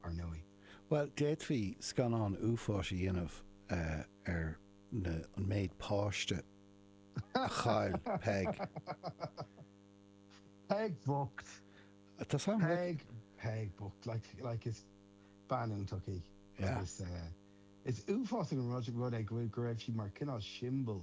ar ndóigh. Bhuel, d'fhéadfaí scannán uafáis a dhéanamh ar na, an méid páiste a chaill Peig. Peig bhocht! Tá sin rud. Peig, Peig bhocht, like, like is bean iontach í Yeah. agus eh, is uafásach an rud, rud é go bhfuil, go raibh sí mar cineál siombal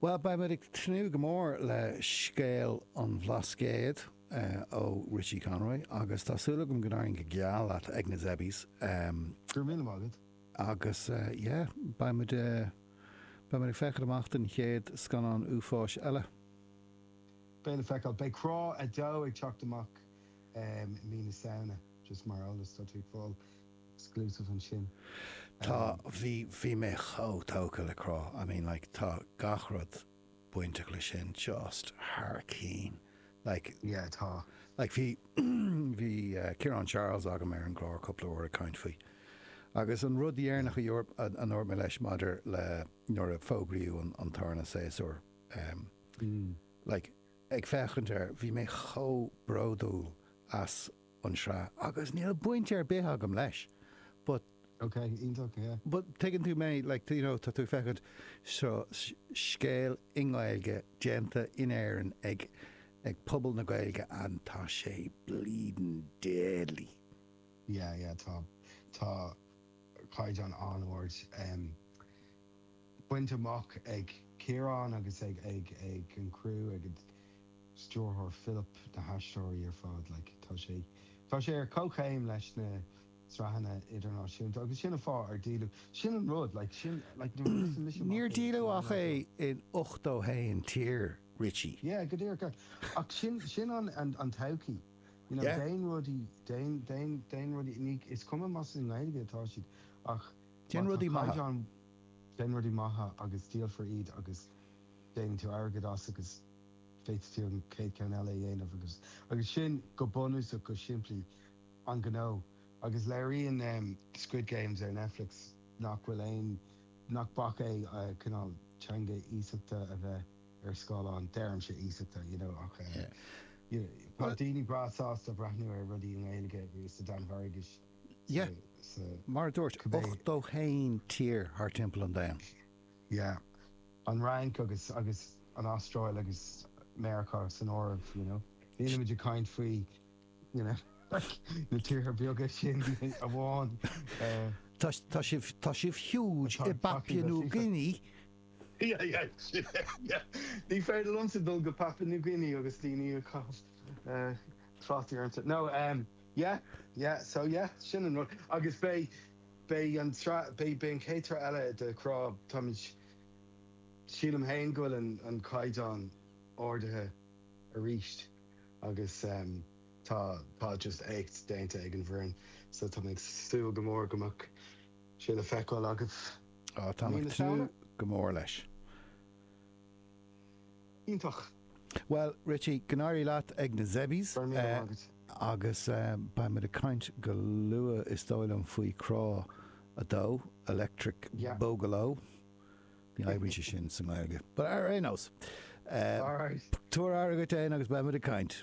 Bhuel, beimid ag tnúth go mór le scéal an Bhlascaoid ó Richie Conroy agus tá súil agam go n-éiríonn go geal leat ag na Zebbies. Go raibh míle maith agat. Agus yeah, beimid beimid ag féachaint amach don chéad scannán uafáis eile. Beidh le feiceáil. Beidh Crá 2 ag teacht amach i mí na Samhna, just mar eolas, tá tú ag fáil. exclusive ansin. Tá, bhí, bhí mé chomh tógtha le Crá, I mean like tá gach rud bainteach leis sin just thar cinn, like, yeah, tá, like bhí, bhí Ciarán Charles agam ar an gclár cúpla uair ag caint faoi agus an rud dheireanach a dúirt, a dúirt mé leis maidir le nuair a fógraíodh an tarna séasúr, like ag féachaint air, bhí mé chomh bródúil as. an tsraith agus níl baint ar bith agam leis but. ok, iontach, yeah. but tuigeann tú mé like do you know tá tú ag féachaint, seo scéal i nGaeilge déanta in Éirinn ag ag pobal na Gaeilge and tá sé bleedin deadly. yeah, yeah tá tá caighdeán an-ard em. bainte amach ag Ciarán agus ag an gcriú, ag an stiúrthóir Philip, na haisteoirí ar fad. Tá sé ar comhchéim leis na sraitheanna idirnáisiúnta agus sin an fáth ar díoladh. Sin an rud. Níor díoladh ach é in ochtó haon tír, Richie. Yeah, go díreach. Ach sin an todhchaí, you know, déan rudaí, déan rudaí, is cuma más i nGaeilge atá siad ach má tá caighdeán. Déan rudaí maithe agus díolfar iad agus déanann tú airgead as agus féadfaidh tú an chéad cheann eile a dhéanamh agus agus sin go bunúsach, go simplí, an gnó. Agus léiríonn Squid Games ar Netflix nach bhfuil aon, nach bac é cineál teanga iasachta a bheith ar scáileán, deirimse iasachta, you know, ach you know tá daoine breá sásta breathnú ar rudaí i nGaeilge, sa Danmhairgis, yeah, so, mar dúirt, 81 tír thar timpeall an domhain. Yeah, an Fhrainc agus agus an Astráil agus Meiriceá san áireamh, you know. Nílimid ag caint faoi, you know, like, na tíortha beaga sin amháin. Uh, tá, tá, sibh, tá sibh huge i Papua New Guinea. Yeah, yeah, yeah. Ní féidir liomsa dul go Papua New Guinea agus daoine ag caitheamh uh, trátaí ormsa. No, um, Yeah, yeah, so yeah, sin an rud. Agus beidh, beidh an tsraith, beidh, beidh an chéad tsraith eile de Crá, táimid, sílim féin go bhfuil an, an caighdeán ardaithe arís agus ehm tá, tá just éacht déanta ag an bhfoireann so tá mé ag súil go mór go mbeadh sé le feiceáil agaibh mí na Samhna. Á, tá mé ag tnúth go mór leis. Iontach! Bhuel, Richie, go n-éirí leat ag na Zebbies. Go raibh míle maith agat. Agus beidh muid ag caint go luath, is dóigh liom, faoi Crá 2, Electric Boogaloo. Ní oibríonn sé sin sa nGaeilge. But ar aon nós, tabhair aire dhuit fhéin agus beidh muid ag caint.